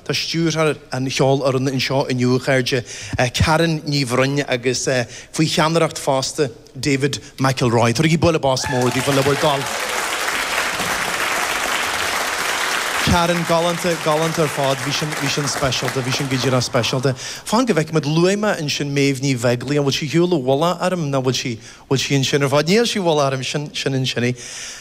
Tá stiúrthóir an cheolfhoirne anseo inniu, a chairde, Karen Ní Bhroin, agus faoi cheannaireacht fosta David McIlroy. Tabhair bualadh bos mór di le bhur dtoil. Karen, galánta, galánta ar fad. Bhí sin, bhí sin speisialta, bhí sin go díreach speisialta. Fan go bhfeicimid luaigh mé ansin Méabh Ní Bheaglaoich, an bhfuil sí ar shiúl i bhfolach orm, ná an bhfuil sí Bhfuil sí ansin ar fad? Níl sí, bhuel, feicim sin, sin ansin í.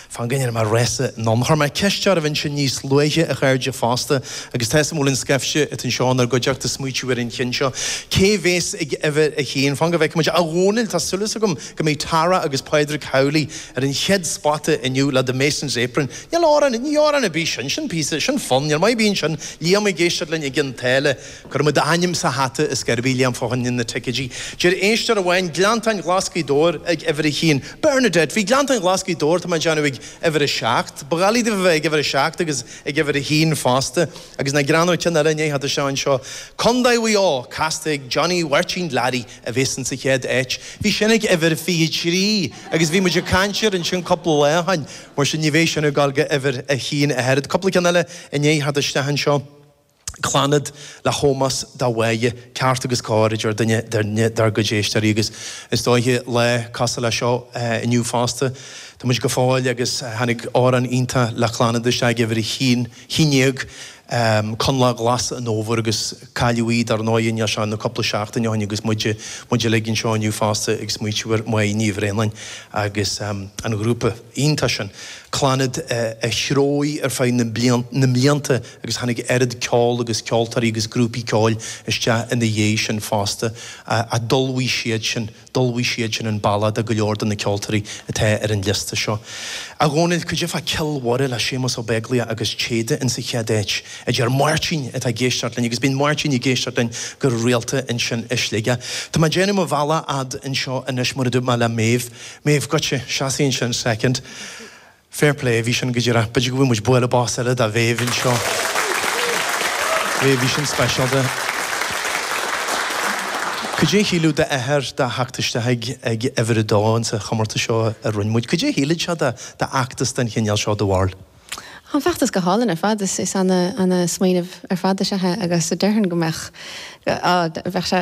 Fan go ndéanfaidh mé rása anonn. Chuir mé ceist oraibh ansin níos luaithe, a chairde, fosta, agus tá 'fhios a'm go bhfuil an scaifte atá anseo inár gcuideachta ag smaoitiú ar an cheann seo. Cé bhéas ag uimhir a haon? Fan go bhfeice muid. A Dhónaill, tá súil agam go mbeidh Tara agus Pádraig Connaghan ar an chéad spota inniu, le The Mason's Apron. Níl amhrán, ní amhrán ar bith sin, sin píosa, sin fonn, ar maith an fonn sin, Liam ag éisteacht linn i gCionn tSáile, Cuirimid a ainm sa hata, a deir sí liom fá choinne na ticeidí. Deir éisteoir amháin, Gleanntáin Ghlas' Ghaoth Dobhair ag uimhir a haon. Bernadette, bhí Gleanntáin Ghlas' Ghaoth Dobhair, tá mé ag déanamh, ag uimhir a seacht. Ba dhoiligh dó a bheith ag uimhir a seacht agus ag uimhir a haon fosta. Agus ná greannóidh ceann eile i ndiaidh a theacht isteach anseo. Contae Mhaigh Eo, casta ag Johnny Mháirtín Learaí, a bhéas insa chéad áit. Bhí sin ag uimhir fiche trí agus bhí muid ag caint air ansin cúpla lá ó shoin, mar sin ní bhéidh sin ag dul go uimhir a haon ach oiread. Cúpla ceann eile i ndiaidh a theacht isteach anseo. Clannad, le hómós do Mhoya, ceart agus cóir a deir duine eile dár gcuid éisteoirí agus is dóiche lá cosúil le seo inniu fosta. Tá muid go fóill agus tháinig amhrán iontach le Clannad isteach ag uimhir a haon déag, Coinleach Glas an Fhómhair agus cailleadh í dar ndóigh níl sé ach cúpla seachtaine ó shin agus muid uilig anseo inniu fosta ag smaoitiú ar Mhoya Ní Bhraonáin agus an ghrúpa iontach sin, Clannad, a threoigh ar feadh na mblianta. agus tháinig oiread ceoil agus ceoltóirí agus grúpaí ceoil isteach ina dhiaidh sin fosta ach d'ullmhaigh siadsin, d'ullmhaigh siadsin an bealach do go leor de na ceoltóirí atá ar an liosta seo. A Dhónaill, cad é fá Cill Mhuire le Séamus Ó Beaglaoich agus Téada insa chéad áit? a deir Máirtín atá ag éisteacht linn agus bíonn Máirtín ag éisteacht linn go rialta ansin i Sligeach. Tá mé ag déanamh mo bhealaigh fhad anseo anois mar a dúirt mé le Méabh. Méabh, goitse, seas ansin soicind. Fair play, bhí sin go díreach. B'fhéidir go dtabharfadh muid bualadh bos eile do Mhéabh anseo. Bhí sin speisialta. Cad é a shíleadh d'athair de theacht isteach ag uimhir a dó insa chomórtas seo a rinne muid? Cad é a shíleann tú d'fheachtas den chineál seo do Bharrscéalta? An feachtas go hálainn ar fad. Is ana smaoineamh ar fad is ea é agus déarfainn go mbeadh, bheadh sé,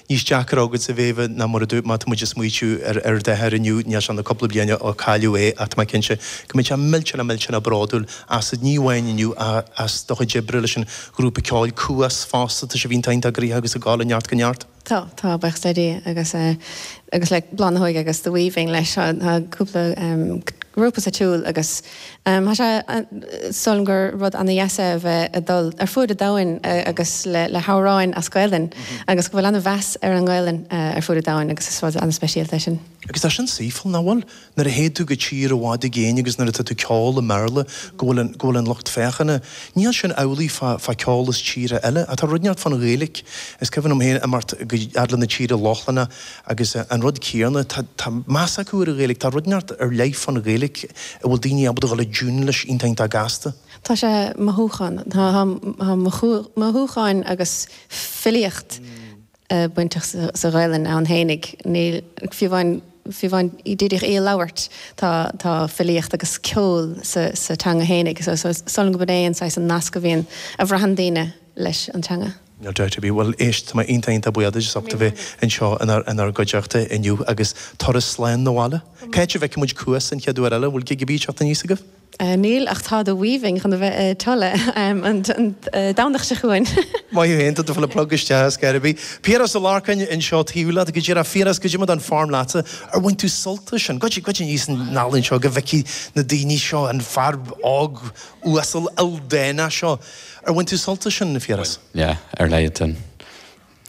níos deacra agat, a Mhéabha, ná mar a dúirt mé, tá muid ag smaoitiú ar ar d'athair inniu, níos mó ná cúpla bliain ó cailleadh é ach tá mé cinnte go mbeidh sé millteanach millteanach bródúil asat, ní amháin inniu ach as do chuid oibre leis an ghrúpa ceoil Cuas fosta, tá sibh iontach iontach gnóthach agus ag gabháil ó neart go neart. Tá, tá, buíochas le Dia agus agus le Bláth na hÓige agus The Weaving leis, tá cúpla grúpa sa tsiúl agus Tá sé, is dóigh liom gur rud ana dheas é a bheith ag dul ar fuaid an domhain agus le hamhráin as Gaelainn agus go bhfuil ana mheas ar an nGaelainn ar fuaid an domhain agus is rud ana speisialta é sin. Agus tá sin saoithiúil, nach bhfuil? Nuair a théid tú go tír i bhfad i gcéin agus nuair atá tú ag ceol i mBéarla go bhfuil an, go bhfuil an lucht féachana, níl sin amhlaidh fá, fá ceol as tíortha eile. Tá rud inteacht fán Ghaeilic, is cuimhin liom féin imeacht go, fhad le na tíortha Lochlannacha Agus an rud céarna, tá meas acu ar an Ghaeilge, tá rud inteacht ar leith fán Ghaeilge a bhfuil daoine ábalta dhul i dtiúin leis iontach iontach gasta. Tá sé mothúchán, tá mothúcháin agus filíocht bainteach sa Ghaelainn ann fhéinig, níl, fiú amháin, fiú amháin díreach í a labhairt tá, tá filíocht agus ceol sa teanga fhéinig, so is dóigh liom gurb in é an saghas an nasc a bhíonn, a bhraitheann daoine leis an teanga. No doubt I be. Bhuel, éist, tá mé iontach, iontach buíoch duit as ucht a bheith anseo inár gcuideachta inniu agus turas slán abhaile. Cá háit a bhfeicfidh muid Cuas an chéad uair eile? An bhfuil gig ar bith ag teacht aníos agaibh? Níl, ach tá The Weaving chun a bheith i Tulla an Domhnach seo chugainn. Maith thú féin, tá tú ag fáil an plug isteach ar scor ar bith. Piaras Ó Lorcáin anseo taobh leat, go díreach. Phiaras, goidé mar atá an form leatsa. Ar bhain tú sult as sin? Gabh aníos anall anseo go bhfeicfidh na daoine seo, an fear óg uasal ildánach seo. Ar bhain tú sult as sin, a Phiarais? Bhain, yeah, ar leathadh.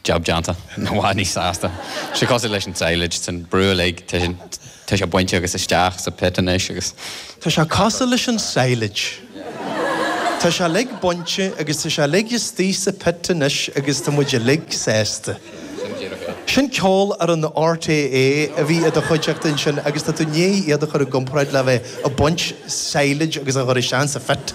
Jab déanta. I bhfad níos sásta. Sé cosúil leis an silage, an brú uilig, tá sé bainte agus isteach sa pit anois agus. Tá sé cosúil leis an silage. Tá sé uilig bainte agus tá sé uilig istigh sa pit anois agus tá muid uilig sásta. Sin Ceolfhoireann RTÉ a bhí i do chuideachta ansin agus tá tú i ndiaidh iad a chur i gcomparáid le bheith ag baint silage agus a chur isteach sa phit.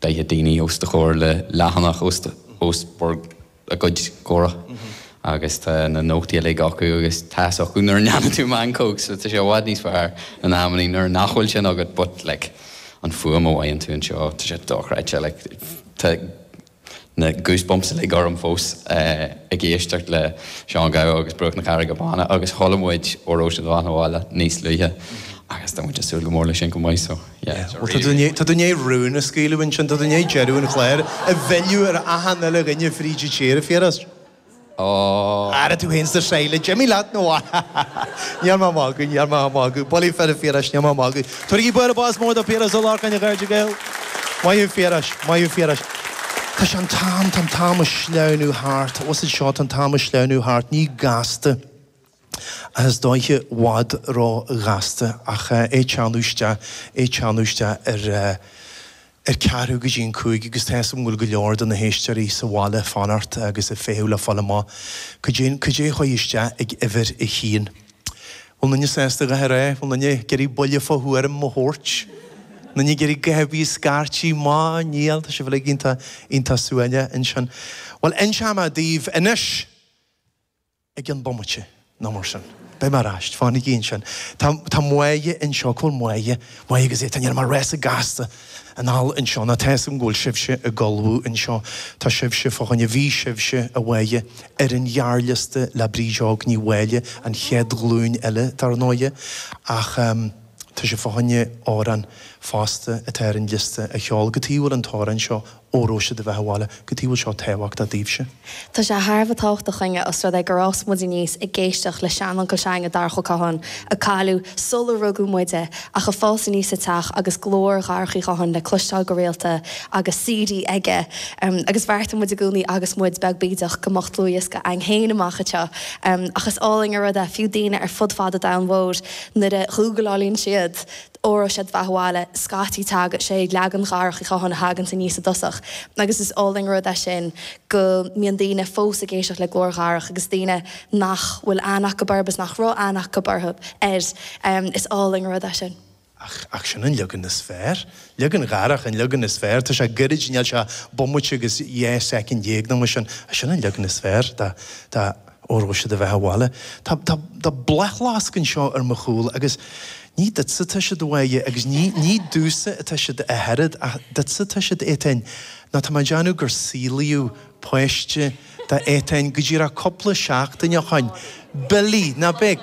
Daichead daoine os do chomhair le leathanach os bhur gcuid comhrá agus tá na nótaí uilig acu agus tá a fhios acu nuair a ndéanann tú meancóg so tá sé i bhfad níos fearr in amannaí nuair nach bhfuil sin agat but like an fuaim a bhfaigheann tú anseo tá sé dochreidte like tá na goosebumps uilig orm fós ag éisteacht le Seán Gabha agus Bruach na Carraige Báine agus chuala muid Óró Sé do Bheatha Abhaile níos luaithe agus tá muid ag súil go mór le sin chomh maith so yeah, it's a really, really Tá tú i ndiaidh rún a scaoileadh ansin, tá tú i ndiaidh deireadh an chláir a mhilleadh ar achan uile dhuine fríd an tír, a Phiarais. Ó! Ara tú fhéin is an silage! Imigh leat nó? Ní raibh mé ach ag magadh, ní raibh mé ach ag magadh. Bulaí fir a Phiarais, ní raibh mé ach ag magadh. Tabhairigí bualadh bos mór do Phiaras Ó Lorcáin, a chairde Gael! Maith thú Phiarais, maith thú Phiarais. Tá sé an t-am, tá an t-am ag sleamhnú thart. Is é seo, tá an t-am ag sleamhnú thart. Ní gasta. Is dóiche i bhfad róghasta ach é teannadh isteach, é teannadh isteach ar ar ceathrú go dtí an cúig agus tá's agam go bhfuil go leor de na héisteoirí sa bhaile ag fanacht agus ag feitheamh le fáil amach cad é, cad é a chuaigh isteach ag uimhir a haon. Bhfuil aon duine sásta a dhath ar aghaidh? Bhfuil aon duine ag iarraidh buille fá thuairim a thabhairt? Aon duine ag iarraidh guth ar bith scairtigh? Má níl, tá sibh uilig iontach, iontach súile ansin. Bhuel, inseoidh mé daoibh anois! ag an bomaite, nó mar sin. Beidh mé ar ais. Fanaigí ansin. Tá, tá Máire anseo. Cá bhfuil Máire? Máire agus é. Tar measartha gasta anall anseo ná tá's agam go bhfuil sibhse ag ullmhú anseo. Tá sibhse fá choinne, bhí sibhse, a Mháire, ar an ghearrliosta le Bríd Óg Ní Mháille, an chéad ghlúin eile, dar ndóighe, ach ehm, tá sibh fá choinne amhrán fosta atá ar an liosta a cheol cad chuige a bhfuil an t-amhrán seo, Óró Sé do Bheatha Abhaile cad chuige a bhfuil seo tábhachtach daoibhse. Tá sé thar a bheith tábhachtach againne os rud é gur fhás muid aníos ag éisteacht le seanuncail s'againne Darach Ó Catháin, a cailleadh sular rugadh muide ach ag fás aníos sa teach agus glór Dharach Uí Chatháin le cloisteáil go rialta agus CD aige agus bheartaigh muid i gcónaí agus muid beag bídeach go mbeadh dlúthdhiosca againn féin amach anseo ach is álainn an rud é fiú daoine ar fud fad an domhain mhóir nuair a ghúglálann siad Óró Sé do Bheatha Abhaile scaití tagann sé leagan Dharach Uí Chatháin a thaganns aníos i dtosach agus is álainn an rud é sin go mbíonn daoine fós ag éisteacht le glór Dharach agus daoine nach bhfuil aithne acu orthu is nach raibh aithne acu orthu, air. Is álainn an rud é sin. Ach sin an leagan is fearr. Leagan Dharach an leagan is fearr. Tá sé goirid, níl sé ach bomaite agus dhá soicind dhéag nó mar sin ach sin an leagan is fearr. Tá. Óró Sé do Bheatha Abhaile. Tá bláthfhleasc anseo ar mo chúl agus ní duitse atá siad a Mháire agus ní duitse atá siad, a Shearad, ach duitse atá siad, Étaín. Ná tá mé ag déanamh gur saolaíodh páiste do Étaín go díreach cúpla seachtain ó shin. Billy, ná beidh.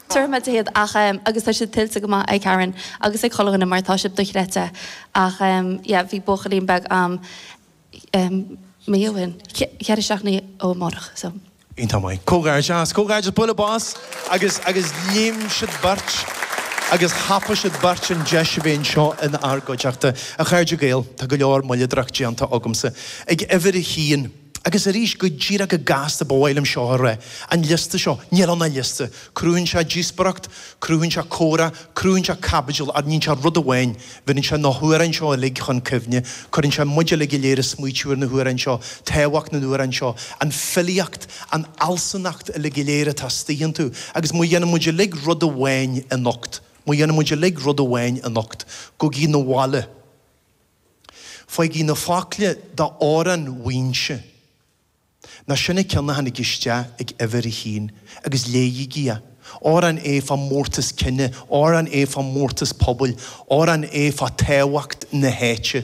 Tabharfaimid iad, ach, agus tá siad tuillte go maith ag Karen agus ag Culhwnan mar tá siad dochreidte, ach, yeah, bhí buachaillín beag a'm mí ó shin, ceithre seachtainí ó amárach, so. Iontach maith. Comhghairdeas. Comhghairdeas. Bualadh bos. Agus, agus léim siad beirt agus thapaigh siad beirt an deis a bheith anseo inár gcuideachta. A chairde Gael, tá go leor moilleadóireacht déanta agamsa ag uimhir a haon. Agus arís, go díreach go gasta, ba mhaith liom seo a rá, an liosta seo, níl ann ach liosta. Cruthaíonn sé díospóireacht, cruthaíonn sé comhrá, cruthaíonn sé caibidil, ach níonn sé rud amháin, bheireann sé na hamhráin seo uilig chun cuimhne, cuireann sé muid uilig go léir ag smaoitiú ar na hamhráin seo, tábhacht na n-amhrán seo, an filíocht, an fhealsúnacht uilig go léir atá istigh iontu. Agus má dhéanann muid uilig rud amháin anocht, má dhéanann muid uilig rud amháin anocht, gabhaigí 'na bhaile. Faighigí na focla d'Amhrán Mhaínse, nó sin an cionn a tháinig isteach ag uimhir a haon, agus léighigí é. Amhrán é fá mhórtas cine, amhrán é fá mhórtas pobail, amhrán é fá tábhacht na háite.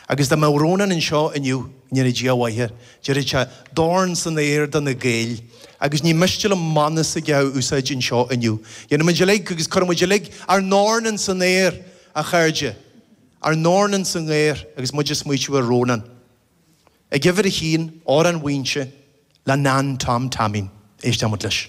Agus dá mbeadh Rónán anseo inniu, go ndéana Dia a mhaith air, déarfadh sé, Dorn san aer do na Gaeil! Agus ní miste liom mana s'aige a úsáid anseo inniu. Déanfaimid uilig, agus cuirfimid uilig, ár ndorn ins an aer! A chairde, ár ndorn ins an aer agus muid ag smaoitiú ar Rónán. Ag uimhir a haon, Amhrán Mhaínse le Nan Tom Taimín. Éistimis leis.